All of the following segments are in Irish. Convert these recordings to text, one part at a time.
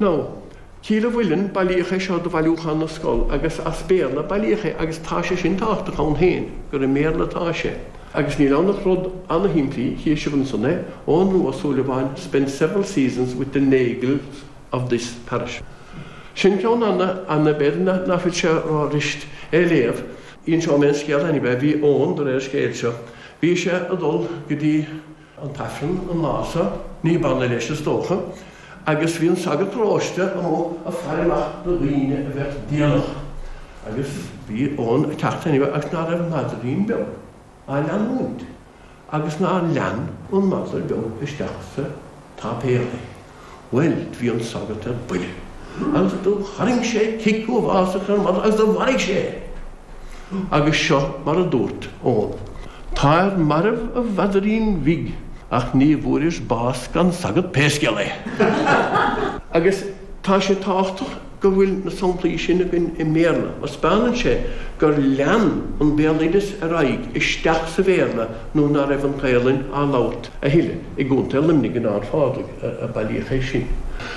Nó, Cill an Mhuilinn, bailíodh é seo do Bhailiúchán na Scol agus as Béarla a bailíodh é agus tá sé sin tábhachtach ann féin gur i mBéarla atá sé. Agus níl ann ach rud ana-shimplí, chíonn sibh ansan é, Eoghan Rua Ó Súilleabháin spent several seasons with the Nagles of this parish. Sin ceann ana, ana b'fhéidir nach bhfuil sé ró-fhuirist é a léamh. Inseoidh mé an scéal anyway, bhí Eoghan, de réir an scéil seo, bhí sé ag dul go dtí, an t-aifreann an lá so, ní b'annamh leis is dócha, agus bhí an sagart paróiste amuigh ag faire amach na daoine a bheadh déanach, agus bhí Eoghan a' teacht anyway agus ná raibh an maidrín beag á leanúint agus nár lean an madra beag isteach sa tsáipéal é. Bhuel, do bhí an sagart ar buile agus do tharraing sé cic uafásach ar an madra agus do mharaigh sé é. Agus seo mar a dúirt Eoghan. Táir marbh a mhaidrín bhig ach ní bhfuairis bás gan sagart pé scéal é. Agus tá sé tábhachtach. go bhfuil na samplaí sin againn i mBéarla, mar 'speánann sé gur lean an Béaloideas ar aghaidh isteach sa Bhéarla nuair ná raibh an Ghaelainn á labhairt a thuilleadh i gContae Luimnigh in Ard Phádraig a bailíodh é sin.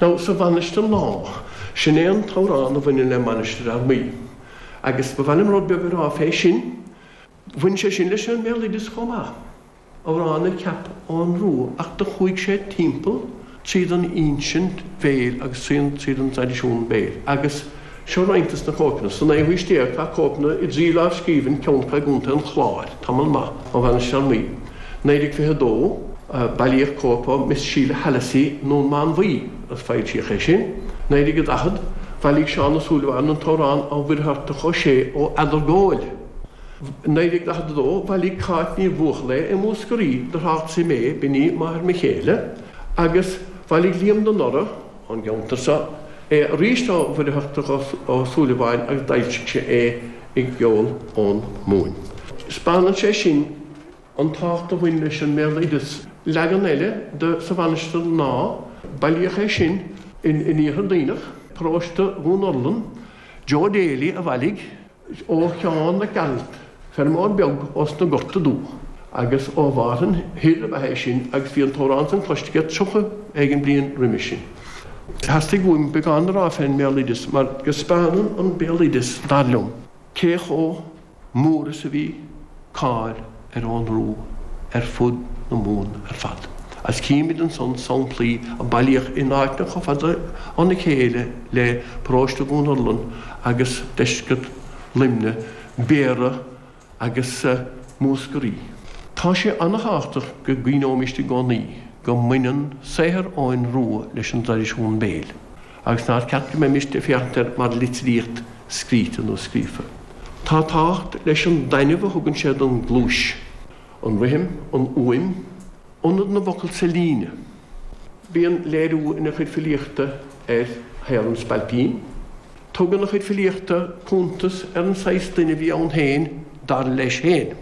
Nó sa Mhainistir Lá, sin é an t-amhrán a bhaineann le Mainistir Fhear Maí. Agus ba mhaith liom rud beag a rá fé sin, bhain sé sin leis an mBéaloideas chomh maith. Amhrán a cheap Eoghan Rua ach do chuaidh sé timpeall tríd an insint bhéil agus tríd an traidisiún béil agus seo roinnt de na cóipeanna. Sa naoú haois déag tá cóipeanna i dtrí lámhscríbhinn ceann acu gContae an Chláir, tamall maith ó Mhainistir Fhear Maí, 1922, bailíodh cóip ó Miss Sheila Hallissey i nDún Mánmhaí, agus foilsíodh é sin, 1940, bhailigh Seán Ó Súilleabháin an t-amhrán ó Mhuircheartach Ó Sé ó Eadargóil. 1942, Bhailigh Cáit Ní Bhuachalla i Múscraí do thrácht Tré Mé b'in í máthair mo chéile agus bhailigh Liam de Noraidh ón gceantar seo é arís ó Mhuircheartach Ó Súilleabháin agus d'fhoilsigh sé é i gCeol ón Mumhain. 'Speánann sé sin an tábhacht a bhain leis an mbéaloideas. Leagan eile de Sa Mhainistir Lá bailíodh é sin in Iarthar Duibhneach, paróiste Dhún Urlann, Joe Daly a bhailigh, ó Sheán Mac Gearailt, feirmeoir beag ó sna Gorta Dubha, agus ó Mhárthain Thoir ab ea é sin agus bhí an t-amhrán san cloiste aige tríocha éigin bliain roimis sin. Theastaigh uaim beagán a rá fén mbéaloideas mar go speánann an béaloideas, dar liom, cé chomh mór is a bhí. cáil ar Eoghan Rua ar fud na Mumhan ar fad, agus címid ansan samplaí a bailíodh in áiteanna chomh fada óna chéile le paróiste Dhún Urlann agus deisceart Luimne, Béarra agus Múscraí. Tá sé an-thábhachtach go gcuimhneoimist i gcónaí go mbaineann saothar Eoghain Rua leis an dtraidisiún béil. Agus nár cheart go mbeimist ag féachaint air mar litríocht scríte nó scríofa? Tá tábhacht leis an dtaitneamh a thugann sé don gcluais, an rithim, an uaim, ionad na bhfocal sa líne. Bíonn léiriú ina chuid filíochta ar shaol an spailpín. Tugann a chuid filíochta cuntas ar an saghas duine a bhí ann féin, dar leis féin.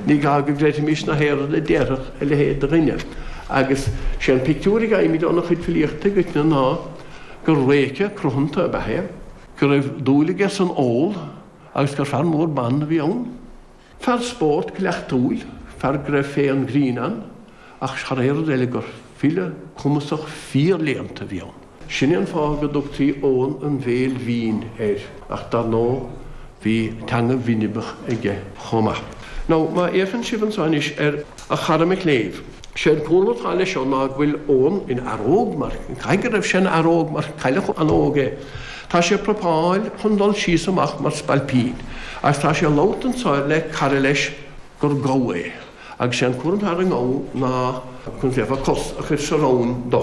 Ní gá go gcreidfimís gach aon rud a déarfadh a leithéid de dhuine. Agus sé an pictiúr a fhaighimid óna chuid filíochta i gcoitinne ná gur réice cruthanta ab ea é, go raibh dúil aige san ól agus gur fear mór ban a bhí ann. Fear spóirt cuileachtúil, fear go raibh féith an ghrinn ann, ach thar aon rud eile gur file cumasach fíor-léannta a bhí ann. Sin é an fáth go dtugtaí Eoghan an Bhéil Bhinn air, ach dar ndóigh bhí teanga bhinibeach aige chomh maith. Nó má fhéachann sibh anseo anois ar a chara mo chléibh, sé an cúlra atá leis seo ná go bhfuil Eoghan ina fhear óg mar caithfidh go raibh sé ina fhear óg mar cailleadh an-óg é. Tá sé ag prapáil chun dul síos amach mar spailpín agus tá sé ag labhairt anseo le cara leis gur gabha é agus sé an cúram atá ar an ngabha ná, conas a déarfá, cos a chuir sa rámhainn dó.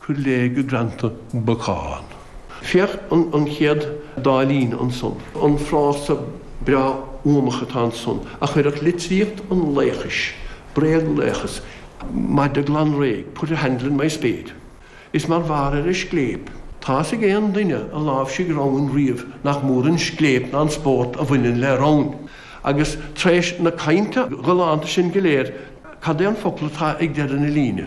Cuir léi go greanta bacán. Féach an chéad dá líne ansan, an frása breá uamach atá ansan a chuirfeadh litríocht an laochais, bréaglaochas, maide glan réidh, put a handle in my spade. Is mar bharr ar an scléip, tá's ag aon duine a láimhsigh rámhainn riamh nach mór an scléip ná an spórt a bhaineann le rámhainn. Agus tar éis na cainte galánta sin go léir, cad é an focal atá ag deireadh na líne?